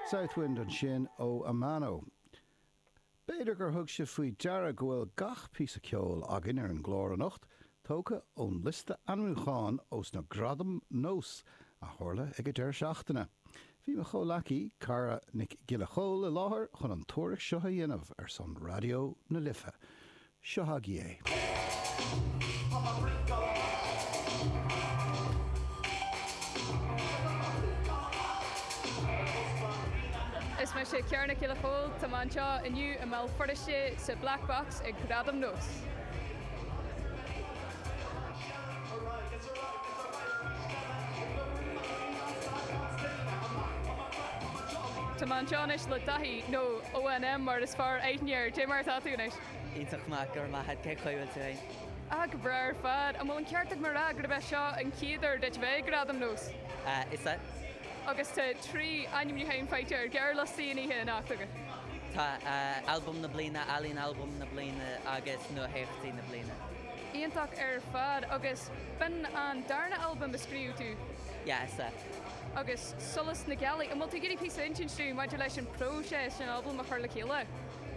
Southwind ansin ó Amano. B'fhéidir gur thug sibh faoi deara go bhfuil gach píosa ceoil againn ar an gclár anocht tógtha ón liosta ainmniúcháin ós na Gradaim Nós a tharla ag an deireadh seachtaine. Bhí mo chomhleacaí, Cara Nic Giolla Chomhaill i láthair chun an tuairisc seo a dhéanamh ar son Raidió na Life. Seo agaibh é. Is mise Ciara Nic Giolla Chomhaill. Tá mé anseo inniu i mBéal Feirste sa Black Box ag Gradaim nós. Tá mé anseo anois le Daithí, nó ONM mar is fearr aithne air. Cad é mar atá tú anois? Iontach maith, go raibh maith a't, cé chaoi bhfuil tú fhéin? Ahh, go breá ar fad. An bhfuil an ceart agam a rá gurb é seo an chéad uair duit bheith ag Gradaim nós? Ahh, is ea. Agus tá trí ainmniúcháin faighte ar ghearrliostaí an oíche anocht agat. Tá, ahh, Albam na Bliana, Ealaín Albam na Bliana agus Nuatheachtaí na Bliana. Iontach ar fad. Agus b'in an darna albam a scríobh tú? Yeah, is ea. Agus Solas na Gealaí, an bhfuil tú ag iarraidh píosa a insint dúinn maidir leis an bpróiseas an albam a chur le chéile?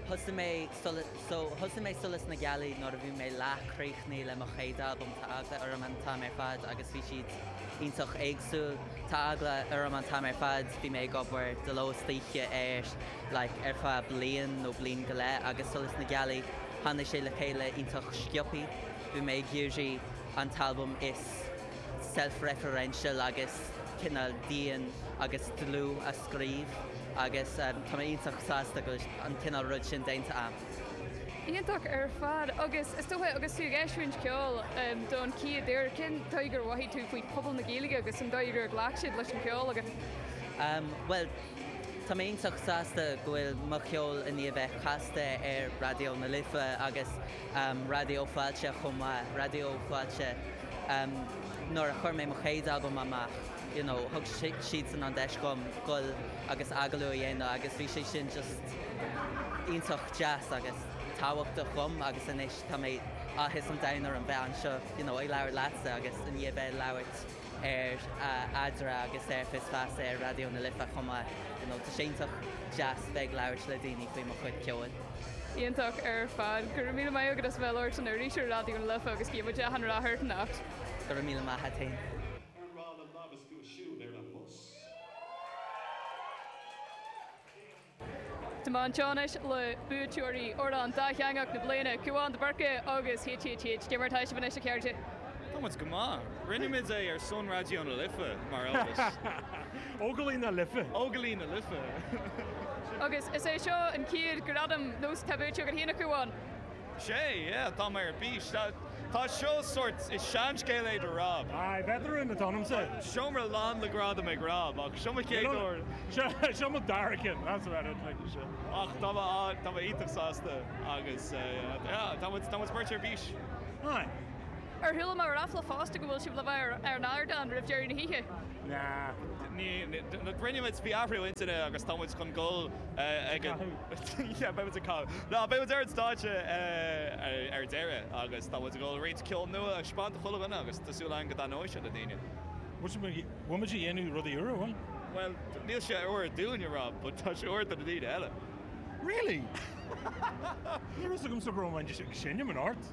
Thosaigh mé Solas, so, thosaigh mé Solas na Gealaí nuair a bhí mé leath críochnaithe le mo chéad albam, tá eagla orm an t-am ar fad agus bhí siad iontach éagsúil, tá eagla orm an t-am ar fad, bhí mé ag obair de ló is d'oíche air like ar feadh bliain nó bliain go leith agus Solas na Gealaí tháinig sé le chéile iontach sciobtha, bhí mé ag iarraidh an t-albam is. self-referential agus cineál dian agus dlúth a scríobh agus tá mé iontach sásta go bhfuil an cineál rud sin déanta agam. Iontach ar fad agus is dócha agus tú ag eisiúint ceoil don chéad uair, cén dóigh gur mhothaigh tú faoi pobal na Gaeilge agus an dóigh gur ghlac siad leis an cheol agat? Bhuel, tá mé iontach sásta go bhfuil mo cheol i ndiaidh a bheith casta ar Raidió na Life agus, Raidió Fáilte chomh maith, Raidió Fáilte nuair a chuir mé mo chéad albam amach you know thug siadsan an deis dhom dul agus agallamh a dhéanamh agus bhí sé sin just iontach deas agus tábhachtach dhom agus anois tá mé, áthas an domhain orm bheith anseo you know ag labhairt leatsa agus i ndiaidh bheith ag labhairt ar Eadra agus ar Fios Feasa ar Raidió na Life chomh maith. You know, tá sé iontach deas bheith ag labhairt le daoine faoi mo chuid ceoil. Iontach ar fad. Go raibh míle maith agat as a bheith ag labhairt linn arís ar Raidió na Life agus guímid gach rath ort anocht. Go raibh míle maith agat féin. Ar mhaith le labhairt agat siúd ar an mbus? Tá mé in éineacht le buaiteoirí Amhrán Dátheangach na Bliana, Cúán de Búrca agus HHH, cad é mar atá sibh beirt anois, a chairde. Tá muid go maith. Rinne muid é ar son Raidió na Life, mar eolas. Óglaigh na Life. Óglaigh na Life. Agus is é seo an chéad Gradam nós atá buaite agat, hea, a Chúáin. Sea, yeah, tá mé ar bís. Tá, tá seo sórt, is seanscéal é do Rob. Aye, veteran atá ionamsa. Seomra lán le gradaim ag Rob, ach seo mo chéad uair. Seo, seo mo dara ceann, that's about it, like. Sea. Ach tá mé, ah, tá mé iontach sásta agus eh, yeah, tá muid, tá muid beirt ar bís. Aye. Ar chuala mé ráfla fosta go bhfuil sibh le bheith ar, ar an ardán roimh deireadh na hoíche? Nah. Ní, ní, rinne muid, bhí athrú intinne agus tá muid chun dul eh, ag an, Yeah, beidh muid ag canadh. Nah, beidh muid ar an stáitse ar deireadh agus tá muid ag dul roinnt ceol nua a thaispeáint do chuile dhuine agus tá súil againn go dtaitneoidh sé le daoine. Bhuel, bhfuil muid ag déanamh rudaí úra, bhfuil? Bhuel, níl sé úr dúinne, Rob but tá sé úr do na daoine eile. Really? Ní raibh 'fhios agamsa go raibh mé ag seinm anocht.